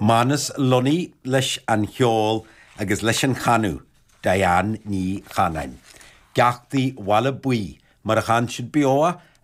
Manus Lunny leis an cheol agus leis an chanadh, Diane Ní Chanáin, Geaftaí Bhaile Buí, mar a chan siad beo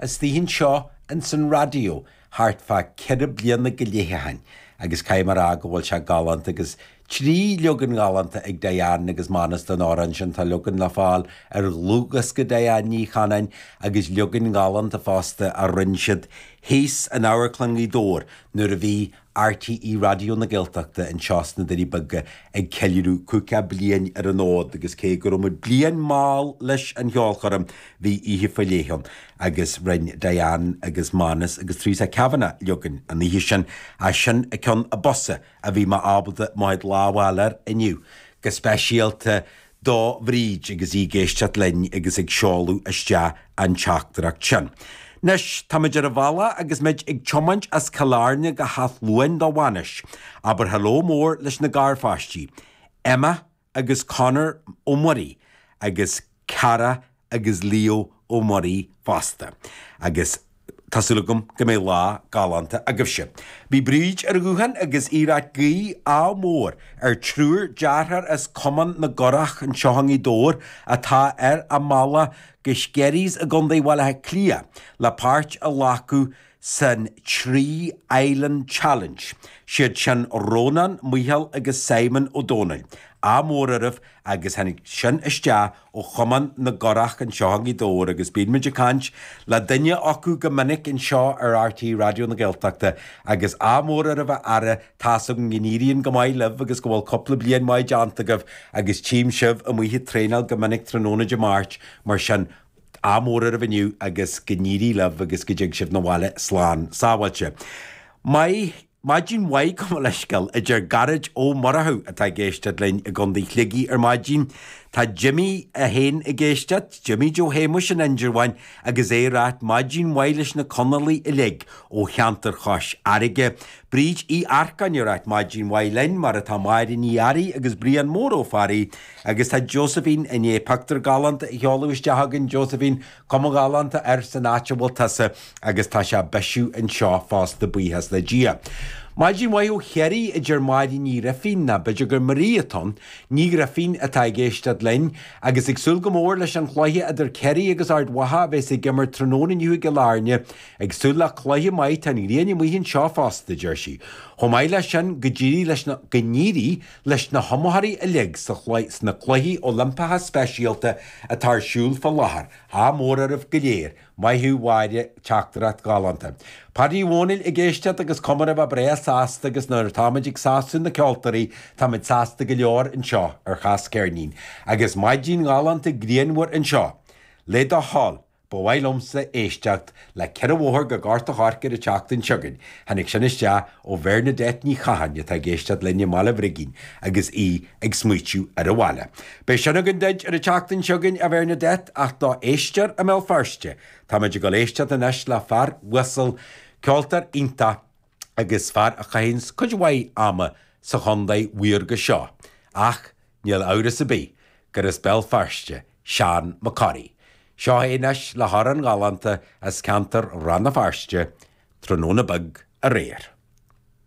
istigh anseo ins an raidió thart fá ceithre bliana go leith ó shin agus caithfidh mé a rá go bhfuil sé galánta agus Trí leagan ghalánta ag Diane agus Manus den amhrán sin, tá leagan le fáil ar dhlúthdhiosca Diane Ní Chanáin agus leagan galánta fosta a rinne siad thíos in Amharclann Ghaoth Dobhair nuair a bhí RTÉ Raidió na Gaeltachta anseo sna Doirí Beaga ag ceiliúradh caoga bliain ar an fhód agus cé go raibh muid bliain mall leis an cheolchoirm bhí oíche faoi leith ann agus rinne Diane agus Manus agus Theresa Kavanagh leagan an oíche sin as Sin i gCeann a Bosa a bhí mé ábalta mo chuid lámh a fháil air inniu, go speisialta do Bhríd agus í ag éisteacht linn agus ag seoladh isteach an teachtaireacht sin. Anois, táimid ar an bhealach agus muid ag tiomáint as Cill Airne go hÁth Luain do bhainis. Abair hello mór leis na garpháistí. Emma, agus Conor Ó Muirí agus Cara agus Leo Ó Muirí fosta agus tá súil agam go mbeidh lá galánta agaibhse. Bhí Bríd ar an ghuthán agus í ag iarraidh guí ádh mór ar triúr dearthár as Cumann na gCurach anseo i nGaoth Dobhair atá ar a mbealach go Skerries i gContae Bhaile Átha Cliath le páirt a ghlacadh san Three Island Challenge. 'Siad sin Rónán, Micheál agus Simon Ó Domhnaill. Ádh mór oraibh agus tháinig sin isteach ó Chumann na gCurach anseo i nGaoth Dobhair agus bíonn muid ag caint le duine acu go minic anseo ar RTÉ Raidió na Gaeltachta agus ádh mór oraibh a fheara, tá's agam go n-éiríonn go maith libh agus go bhfuil cúpla bliain maith déanta agaibh agus tchím sibh amuigh ag traenáil go minic tráthnóna Dé Máirt mar sin Ádh mór oraibh inniu agus go n-éirí libh agus go dtig sibh na bhaile slán sábháilte. Maith, maidin mhaith gabh mo leithscéal, a deir Gearóid Ó Murchú atá ag éisteacht linn i gContae Shligigh ar maidin. Tá Jimí é féin ag éisteacht, Jimí Joe Shéamuis in Indreabhán agus é ag ráit maidin mhaith leis na Conallaigh uilig ó cheantar Chois Fharraige. Bríd Uí Earcáin ag ráit maidin mhaith linn, mar atá Máire Ní Fhearraigh agus Brian Mór Ó Fearraigh Agus tá Josephine i ndiaidh pictiúr galánta a sheoladh isteach chugainn, Josephine, cuma ghalánta air san áit a bhfuil tusa, agus tá sé ag bisiú anseo fosta, buíochas le Dia. Maidin mhaith ó Chiarraí, a deir Máire Ní Ghrifín, nó b'fhéidir gur Marie atá ann? Ní Ghrifín atá ag éisteacht linn, agus ag súil go mór leis an chluiche idir Ciarraí agus Ard Mhacha a bheas ag imirt tráthnóna inniu i gCill Airne. Ag súil le cluiche maith, tá an ghrian amuigh anseo fosta, a deir sí. Chomh maith leis sin, go n-éirí leis na, go n-éirí Leis na hiomaitheoirí uilig sna Cluichí Oilimpeacha Speisialta atá ar siúl fá láthair, ádh mór oraibh go léir! Maith thú, a Mháire, teachtaireacht ghalánta. Páidí Uí Dhomhnaill ag éisteacht agus cuma air a bheith breá sásta agus nuair atáimid ag sásamh na ceoltóirí táimid sásta go leor anseo ar Chas Ceirnín. Agus maidin ghalánta grianmhar anseo. Le do thoil. Ba mhaith liomsa éisteacht le ceithre bhóthar go Gort an Choirce ar an tseachtain seo chugainn, tháinig sin isteach ó Bhernadette Ní Chatháin atá ag éisteacht linn i mBaile Brigín agus í ag smaoitiú ar an bhaile. Beidh sin againn duid ar an tseachtain seo chugainn, a Bhernadette, ach d'éisteoir i mBéal Feirste, táimid ag dul éisteacht anois le fear uasal, ceoltóir iontach, agus fear a chaitheanns cuid mhaith ama sa chontae mhaorga seo, ach níl amhras ar bith gur as Béal Feirste Seán Mac Corraidh. Seo é anois le hamhrán galánta as ceantar Rann na Feirste, Tráthnóna Beag Aréir.